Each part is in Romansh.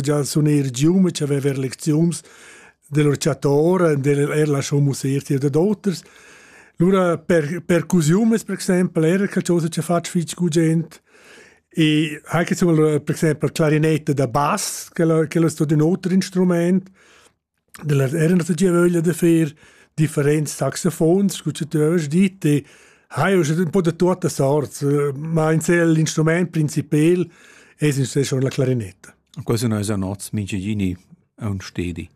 già sun eir gium che avever lecziuns dell'or chatora, del er la show musier de d'auters. Lura per percusiumes per exempel era qualcosa che fatg fitch gugent e anche sul per exempel clarinette da bass che lo che lo sto di un altro instrument Da las eran nossa giavöglia da fer differents saxofons scu cha tü haust dit e haiu ün po da tuotta sorts, ma insel l'instrumaint principel es insè schon la clarinetta. Quasi no esa nots minchegini aun stedi.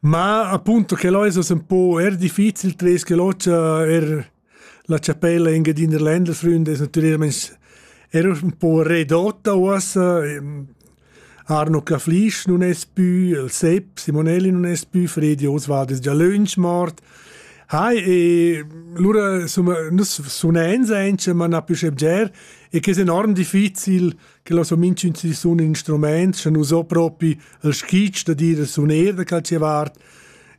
Ma appunto che lò es hoz ün po eir difficil tres che l'ocha er La chapella in Engiadina Ländersrund es natüralmaing eir ün po redotta uossa. Arno Caflisch nun es pü, il Sepp Simonelli nun es pü, Fredi Oswald es già lönch mort. Hai, e lura insomma, nus sunens aint, ma na più sche bger, e che es enorm difficil che lo so minchün si sun in instrument, scha nu so propi il skitsch da dir suner da calche vart.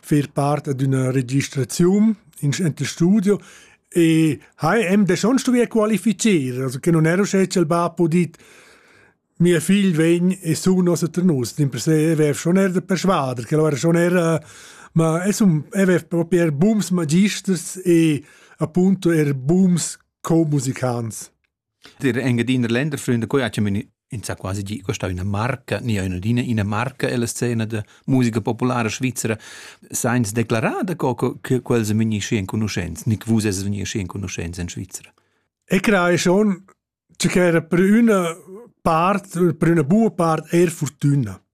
fer part d'üna registraziun in ente studio e ha em de schon stuvier qualifizier, also che non ero sche il ba podit mia figl vegn e su nos a Ternus, din per se vev schon er de persuader, che lo era schon era ma es un evev proper booms magisters e appunto er booms co-musicants. Dir Engadiner Länderfreunde quai ha chamin insà quasi gi questa üna marca, nia üna ina marca ella scena da musica populara svizzera, sainz declarar da co che quels sun vegni schi enconuschents, nic vus es vegni schi enconuschents in Svizra. E crei schon, che era per üna part, per üna buona part eir fortüna.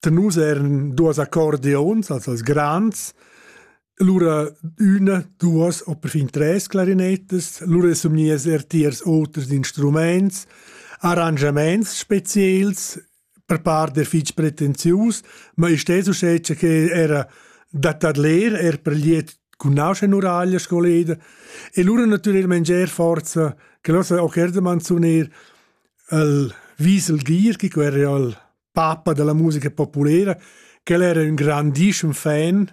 da nus eran duas accordeons, also als grands, lura üna, duas o perfin tres clarinetas, lura somnias er tiers oters instruments, arrangiaments speziels per par der fitg pretenzius, ma isch des uschè che era da tadler er per liet cun nauscha nuraglia scoleda e lura natüralment ger forza che lossa auch erdemann sun er al Wiesel Gier, che quer al papa della musica populera, che el era un grandissimo fan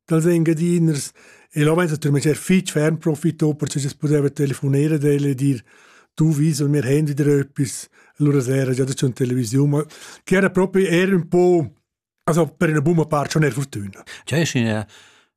dels engadiners e l'homet hat metter fitg ferm profitto perche che pudeva telefonere d'el e dir tu vis il mio handy dröppis allora sera già c'è in televisione ma che era proprio era un po' also per una bumma part schon er fortuna Cioè, in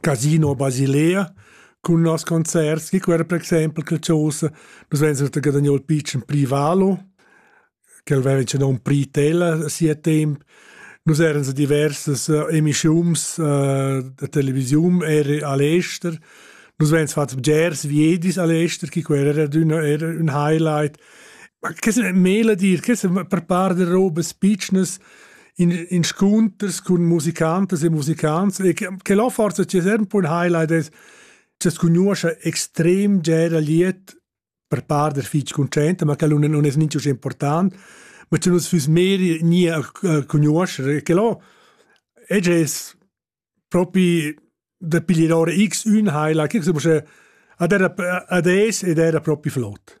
Casino Basilea cun nos concerts chi quera per exaimpel qualchosa nus vain surta guadagno il pitschen privalo ch'el vaiva inchè nom prit el a sia temp nus eran sa diversas eh, emischiuns eh, da televisiun er a l'ester nus vains fat bgers viedis a l'ester chi quera era d'üna era ün highlight ma che se mela dir che se per par de robes pitschnas in inscunters cun musicantas e musicants e che, che la forza c'è sempre un highlight è che conosce extrem gera liet per par der fitch concent ma che non non è niente important ma che nus füs meri nie conoscere che lo e es propi da piglier ora x un highlight che adesso ed era propi flott